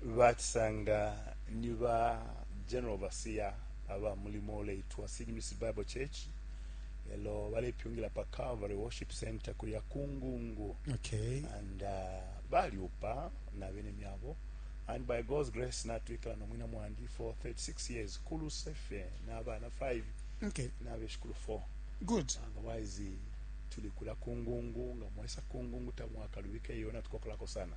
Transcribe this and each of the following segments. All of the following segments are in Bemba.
Bacisanga ni ba General Overseer aba mulimo uleitwa Seed Music Bible Church, elo balepyungila pa Calvary Worship Center kulya kungungu okay. and uh, balyupa na bene myabo and by God's grace natwikala no mwina mwandi for 36 years kuluse fe na bana 5 okay. na beshikulu 4 good otherwise tuli kula kungungu nga mwesa kungungu tamwakalubike iyo natukokolako sana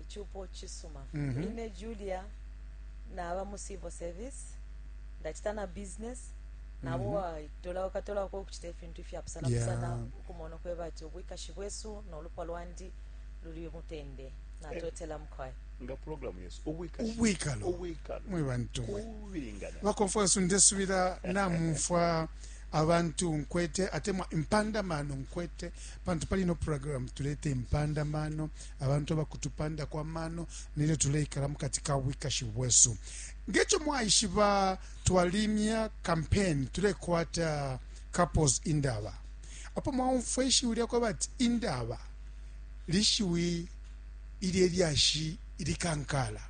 icupo cisuma mm -hmm. ine julia naba mu civil service ndacita na business nabo mm -hmm. tola ukatolako okucita ifintu ifyapusanapusana yeah. ukumona ukweba ati obwikashi bwesu nolupwa lwandi luli mutende natotela eh. mukwai nga programu yesu ubwikalo mwe bantu bakonferensi ndesubira namumfwa abantu nkwete atemwa impandamano nkwete pantu pali no programu tulete impandamano abantu abakutupandako amano nelyo tuleikala mu kati ka bwikashi bwesu ngekyo mwaishiba twalimya kampeni tulekwata couples indaba apo mwaumfwa ishiwi lyakwe bati indaba lishiwi ili elyashi ilikankala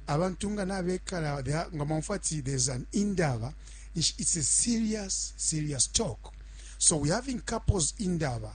abantu nga nabekala nga mwaumfwa ati there's an indaba it's a serious serious talk so we having couples indaba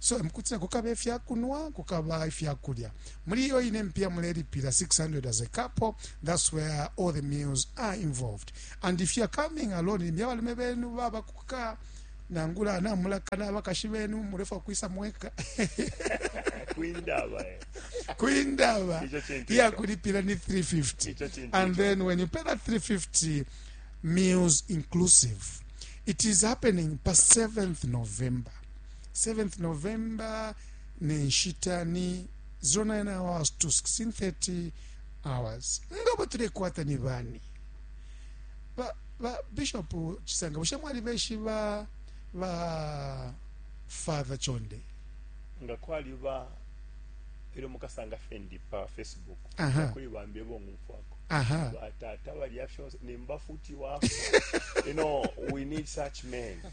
so emukutila kukaba ifya kunwa kukaba ifya kulya muli iyo ine mpiya mulelipila 600 as a couple that's where all the meals are involved and if youare coming alone limbi abalume benu baba kuka nangula namulakana abakashi benu mulefa kwisa mweka kwindaba eh. kwindaba iya kulipila ni 350 and then when you pay that 350 meals inclusive it is happening pa 7th november 7th November ne nshita ni 09 hours to 16:30 hours ngabo tulekwata ni bani ba, ba bishop chisanga bushe mwali beshiba ba father chonde nga kwali ba ero mukasanga fendi pa facebook Aha. kuri bambe bo ngumfwako aha batata balya fyonse nimba futi wafo you know we need such men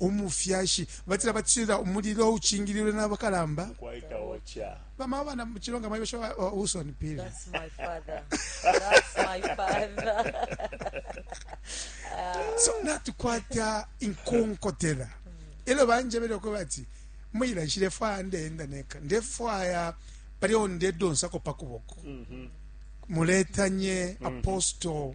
umufyashi batila batila umulilo ucingililwe nabakalamba bamama bana muchilonga maiwe sho uh, usoni pili that's my father that's my father so natukwata inkonkotela elo banjebele ko bati muyila nshile fwa ndenda neka ndefwaya pali onde donsako pakuboko mm -hmm. muletanye mm -hmm. apostle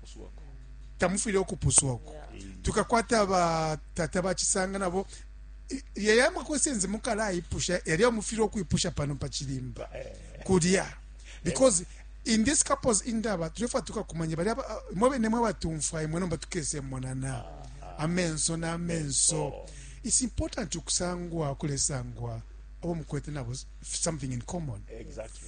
tamufwile ukupuswa uku tukakwata batata bacisanga nabo yeye amakwesenzi mukalayipusha yalya mufile ukwipusha pano pacilimba kulya because in this couples indaba tulefwa tukakumanya balya mwe bene mwe batumfwa imwe nomba tukesemonana amenso n'amenso it's important ukusangwa ukulesangwa abo mukwete nabo something in common exactly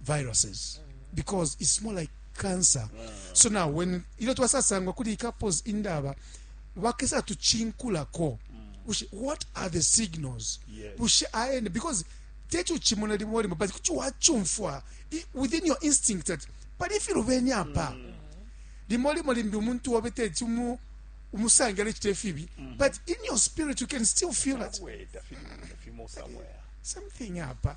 viruses because it's more like cancer so now when ilyo twasasangwa kuli ikapos indaba bakesa tucinkulako bushe what are the signals Yes. bushe aene because teti uchimona limo limo but kuti wachumfwa i- within your instinct that pali ifiluveni apa limo limo limbi umuntu wobe teti umu- umusange alecita ifibi but in your spirit you can still feel that Wait, I feel- I feel more somewhere. something apa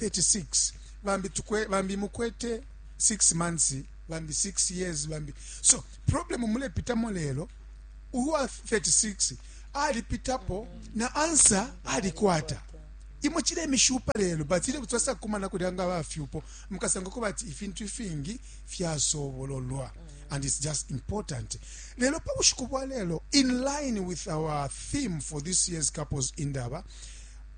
36 bambi tukwe bambi mukwete 6 months bambi 6 years bambi so problem mulepitamo lelo uwa 36 alipitapo na ansa alikwata imwe chile mishupa lelo but ile kutwasa kumana kulyanga bafyupo mukasanga ko bati ifintu ifingi fyasobololwa and it's just important lelo pa bushiku bwa lelo in line with our theme for this year's couples indaba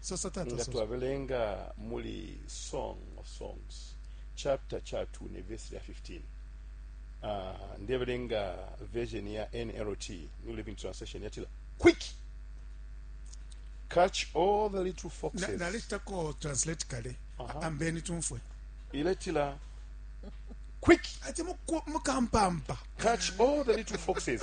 sosa tata nga sosa twabelenga muli song of songs chapter cha 2 ne verse lya 15 uh, ndebelenga version ya nlt new living translation yatila quick catch all the little Na- foxes nalechitako translate kale Aha. ambeni tumfwe iletila quick ati muku- mukampampa catch all the little foxes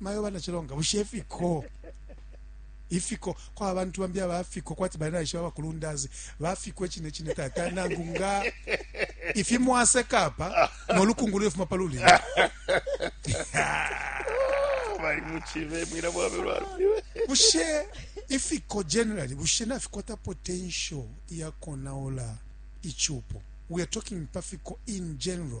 mayo bana chilonga bushe ifiko ifiko kwa abantu bambi abafiko kwati bana isha bakulundazi bafiko echine chine tata nangu nga ifi mwase kapa no lukungu lwe fuma paluli bali muchive mwira bwabe lwalo bushe ifiko generally bushe na fikota potential ya konaola ichupo we are talking pafiko in general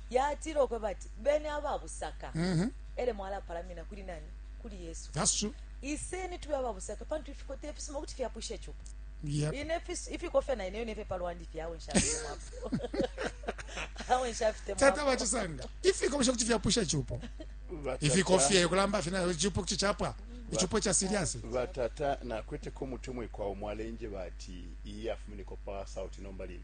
yatila ukwebati beni ababusaka mm -hmm. ele mwalapalamina kuli nani kuli yesu iseni tube ababusaka pantu ifikota ifisuma kuti fyapwisha icupo yep. ifikofya na ineyo nefye palwandi fye awe nshafitemwapo awe nshafitemwapo tata bachisanga ifikofya kuti fyapwisha icupo ifikofya kulamba fye nayo icupo kuti chapwa icupo cha serious batata nakweteko umutumwa kwa omwalenje bati iyi afumineko pa sauti nomba lili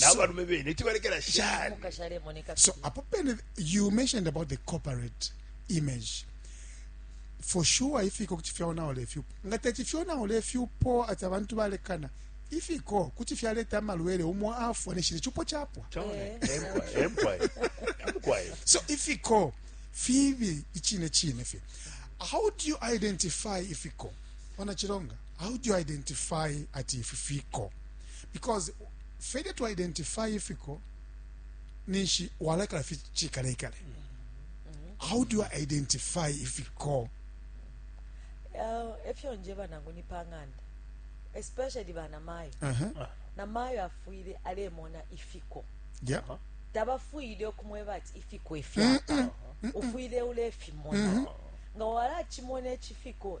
n'abalume bene tibalekela shani so apo pene you mentioned about the corporate image for sure ifiko kuti fyaonaola ifyupo nga teti fyonaola ifyupo ati abantu balekana ifiko kuti fyaleta amalwele umo afwa neshile chupo chapwa eh. so ifiko fibi ichine chine fye how do you identify ifiko wanachilonga how do you identify ati ififiko because failure to identify ifiko ninshi walakala fi chikale kale how do you identify ifiko uh, efyo nje banangu ni panganda especially bana mayo uh -huh. na mayo afwile alemona ifiko yeah. Uh -huh. tabafwile okumweba ati ifiko efyapa ufwile ulefimona mm-hmm. nga walakimona ekifiko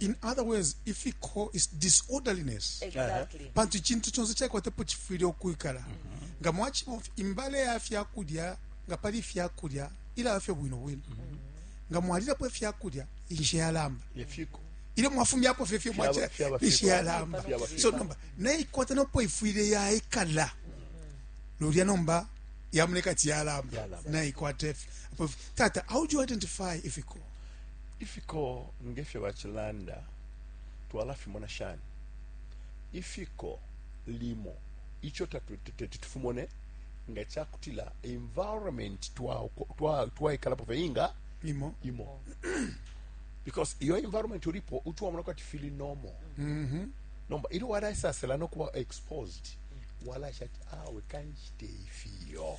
in other words if he call is disorderliness exactly pantu icintu conse caikwatapo cifwile ukwikala nga mwacibona imbale ya fyakulya nga pali ifyakulya ilaba fye bwino bwino nga mwalilapo ifyakulya inshe yalamba yefiko ilyo mwafumyapo fye fye Fyaba- mwaca fyaba inshe fiko. yalamba Fyaba fiko. so nomba naikwata nopo ifwile yaikala lulya nomba yamoneka ati yalamba Yalamba. naikwata ifyo Apo- tata how do you identify ifiko Ifiko nge fyo bacilanda twalafimona shani? Ifiko limo ico teti tufimone nga ca kutila environment twaikalapo fye inga imo imo because iyo environment ulipo utwamona kwati fili normal mm -hmm. nomba ili walaisasela nokuba exposed walaisha ati awe kanshite ifiyo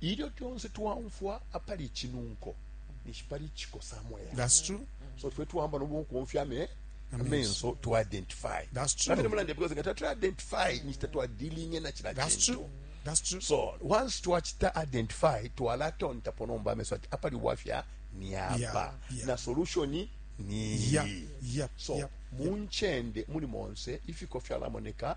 Ilyo tonse twaumfwa apali icinunko ninshi pali icikosa mwela. That's true. So fwe twamba no bukonfya me amenso to identify. That's true. Nakati mulande because ngata to identify ninshi tatwa dealing na chila That's chintu. true. That's true. So once to twachita identify to twalatonta ponomba amenso ati apali wafya ni apa yeah, yeah. na solution ni yeah, yeah, so yeah, munchende yeah. muli monse ifiko fyalamoneka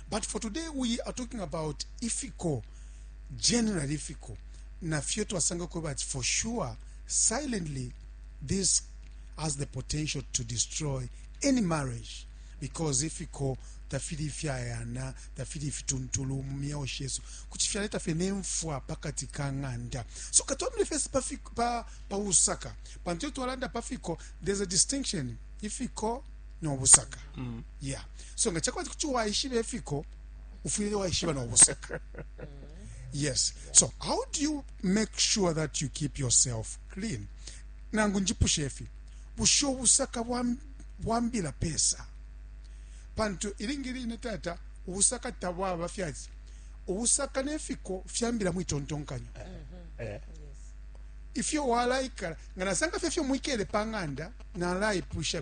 But for today we are talking about ifiko general ifiko na fyo twasanga ko but for sure silently this has the potential to destroy any marriage because ifiko tafili ifyayana tafili ifituntulu mu myeo shesu kuti fyaleta fye nemfwa pakati ka ng'anda so katwamile fesi pa, fiko- pa, pa usaka pantu iyo twalanda pa fiko there's a distinction ifiko no busaka mm. yeah so nga chakwati kuti waishiba efiko ufwile waishiba no busaka yes so how do you make sure that you keep yourself clean nangu njipushe efi busho busaka bwambila pesa pantu ilingi line tata ubusaka tabwaba fyati ubusaka nefiko fyambila mwitontonkanyo mm -hmm. yeah. ifyo walaikala nga nasanga fye fyo mwikele pa ng'anda nalaipusha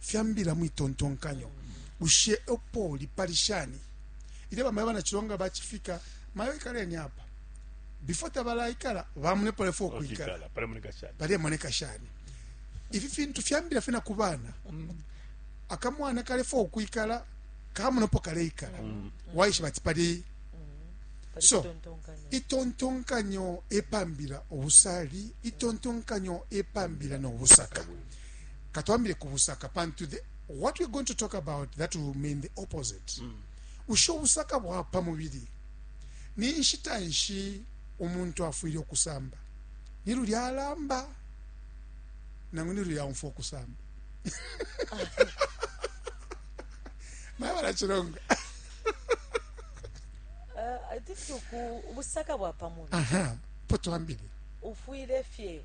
fyambila mwitontonkanyo bushe opoli pali shani ile bamayo banachilonga bachifika mayo ikaleni apa before tabalaikala bamune pale fo kuikala pale moneka shani ifi fintu fyambira fina kubana mm. akamwana kale fo kuikala kamuno po kale ikala mm. waishi bati pali mm. so itontonkanyo epambira obusali itontonkanyo epambira no busaka mm. katwambile ku busaka pantu the, what we're going to talk about that will mean the opposite mm. ushe obusaka bwa pa mubili ni nshita nshi umuntu afwile okusamba ni lulya alamba nangu ni lulya aumfa okusamba naye balakironga uh, ubusaka bwa pa mubili po twambile ufwile fye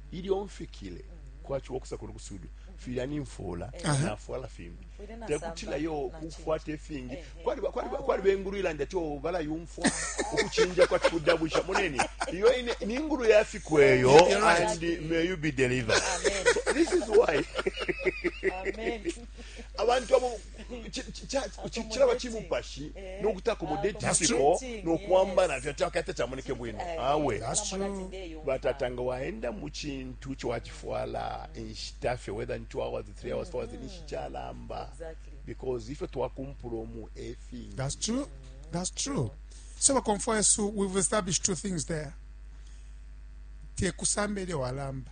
ilyo mfikile kwachiwa kusakulu kusudu filya nimfula nafwala fimbi tekutila yo kufwata ifingi kwali bengulu ilanda ti oh, bala yumfwa ukuchinja kwa kudabusha moneni iyo ine ningulu ya fikweyo and may you be delivered this is why abantu abo cilaba cimupashi eh, nokuteakomodetisiko nokwamba navyo takata camoneke bwino eh, awe batata nga waenda mu cintu cowacifwala inshita fye whether in two hours three hours four hours mm. ninshi calamba because ifyo twakumpula omu efingi that's true that's true so bakomfwa yesu we've established two things there te kusamba ilyo walamba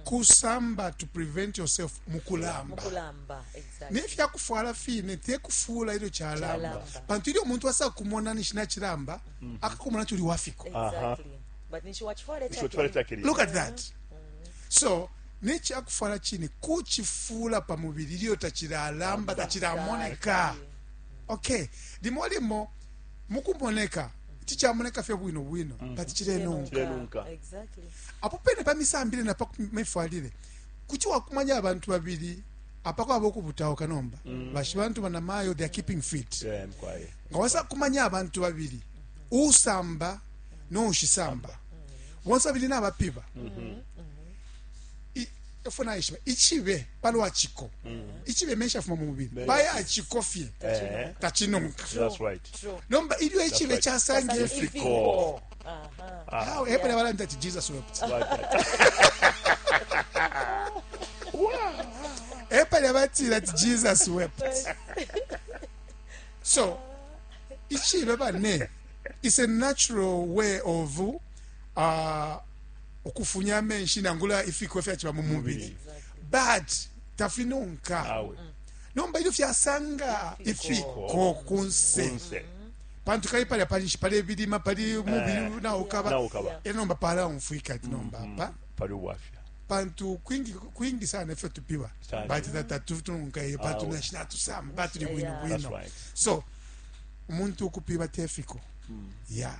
kusamba to prevent yourself mukulamba nefya kufwala fine te kufuula ilyo kyalamba pantu ilyo omuntu asa kumona nishi nakilamba mm. akakumona nti uli wafiko look at that so nekyakufwala kine kukifuula pa mubiri ilyo takilalamba takiramoneka okay limo limo mu kumoneka ici camoneka fye bwino bwino mm. but cilenunka apo pene pa misambile na pa mifwalile kuti wakumanya abantu babili apakwaba okubutawuka nomba mm. bashi bantu banamayo they are keeping fit nga wasa kumanya abantu babili usamba noushisamba bonse babili nabapiba mm-hmm. mm-hmm. efo naishiba ichibe palwa chiko ichibe mesha fuma mu mubili baya chiko fye tachinonka nomba ilyo ichibe chasange ifiko hawe hepo na balanda ati jesus wept hepo na batira ati jesus wept so ichibe bane is a natural way of uh, ukufunya amenshi nangula ifiko fyachiba mu mubili but tafinonka nomba ilyo fyasanga ifiko kunse pantu kali palya palinshi pali ebilima pali eh, mubili naukaba era nomba palaumfwika ati nomba mm-hmm. apa pali ubwafya pantu kwingi kwingi sana ifyo tupiwa bati tata tutununkaye pantu nashina tusamba batuli bwino bwino so umuntu ukupiba tefiko mm. ya yeah.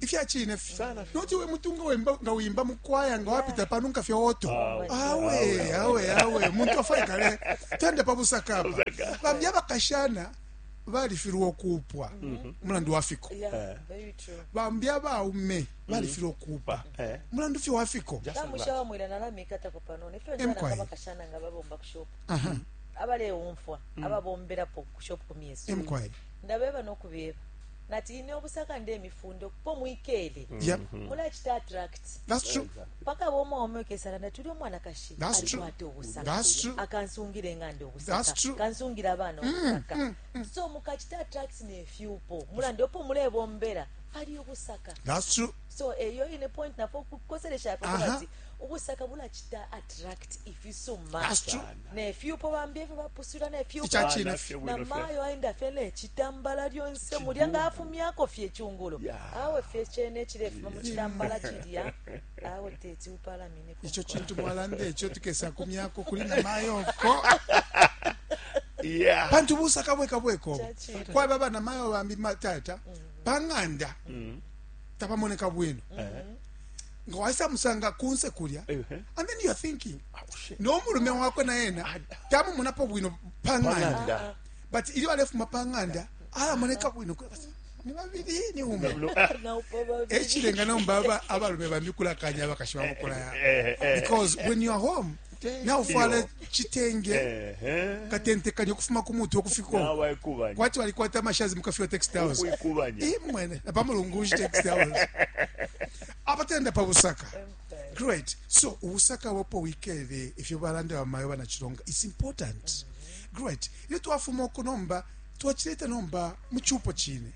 ifya chine fi noti we mutunga wemba nga wimba mukwaya nga wapita pano nkafye oto awe awe awe muntu afaikale tende pa busaka apa bambi abakashana balifilwa okuupwa mhm. mulandu wa fiko eh. bambi abaume mhm. balifilwa okuupa eh. mulandu fye wa fiko abalewumfwa mm. ababomberapo ku shop ku myeso Ndabeba no kubeba nati ine ubusaka ndemifunda ukupo mwikele mm-hmm. mulacita attract pakaba umwaume ukesala nati uli umwanakashi alikwata ubusaka akansungila eng'anda ubusaka kansungila abana mm, ubusaka mm, mm. so mukacita attract nefyupo mulandi opo mulebombela pali ubusaka so eyo ine point nafo kukoselesha ati ubusaka bulacita attract ifisuma nefyupo bambi efyo bapusula nefyuponamayo aenda fye necitambala lyonse mulya nga afumyako fye icungulo awe fye cene ecilefuma mu citambala cilya awe teti upalamine ico cintu mwalanda eco tukesa kumyako kuli namayo ko yeah. pantu ubusaka bweka bweko kwaba abana mayo bambi matata mm. pang'anda mm. tapamoneka bwino mm -hmm. nga waisa musanga kunse kulya and then youare thinking ah, oh, nomulume wakwe na yena ah, ah. tamumunapo bwino panganda but ili walefuma panganda alamoneka bwino ni babiri ni ume ekirenga nomba abalume bambi kulakanya abakashi bamukulaya eh, eh, eh. because when you are home naufwala chitenge katentekanya ukufuma ku mutwe ukufiko kwati walikwata amashazi mukafiwa text house imwene napamulungushi text house abatenda pa busaka great so ubusaka wapo wikele ifyo balanda bamayo banachilonga it's important great ilyo twafuma oku nomba twachileta nomba muchupo chine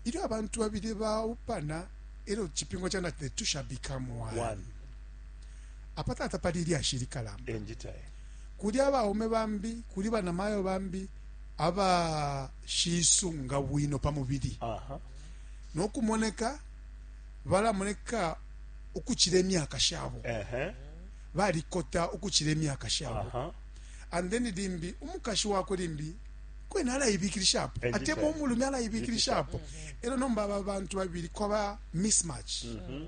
ilyo abantu babili baupana elyo chipingo chana the two shall become one, one. Apa tata pali ilyashi likalamba. Enjita e. Kuli abaume bambi, kuli bana mayo bambi aba shisunga bwino pa mubili. Aha. No kumoneka bala moneka ukuchile myaka shabo. Aha. Bali kota ukuchile myaka shabo. Aha. And then limbi umukashi wako limbi kwena alayibikilisha apo atema omulumi alayibikilisha apo era nomba aba bantu babiri kwaba mismatch mm -hmm.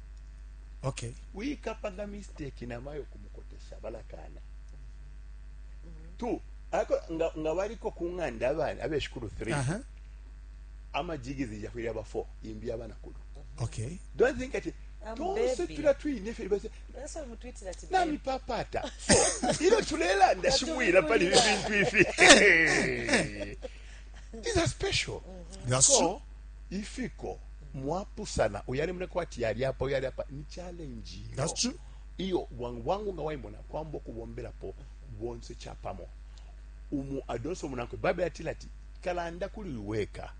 okay wikapanga mistake namayo kumukotesha balakana two ako nga, nga baliko ku ng'anda abana abeshikulu three uh -huh. amajigi zijafwire aba four imbi abana kulu okay don't think ati I'm tonse baby. tula twine fye base That's why we tweeted that today. nami papata so ilo tulelanda shimwira pali ibi bintu ifi these are special mm-hmm. That's so true. ifiko mwapusana uyali mune kwati yali apa uyali apa ni challenge iyo That's true. iyo bwangu bwangu nga waimona kwamba okubomberapo bonse chapamo umu adonse omunankwe bible yatila ati kalanda kuli weka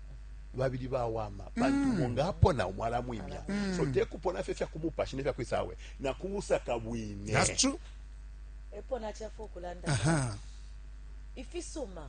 babili bawama pantu mm. munga apona omwala mwimya mm. so tekupona fye fyakumupashi nefyakwisawe nakubusaka bwine That's true. epo nachafa okulanda ifisuma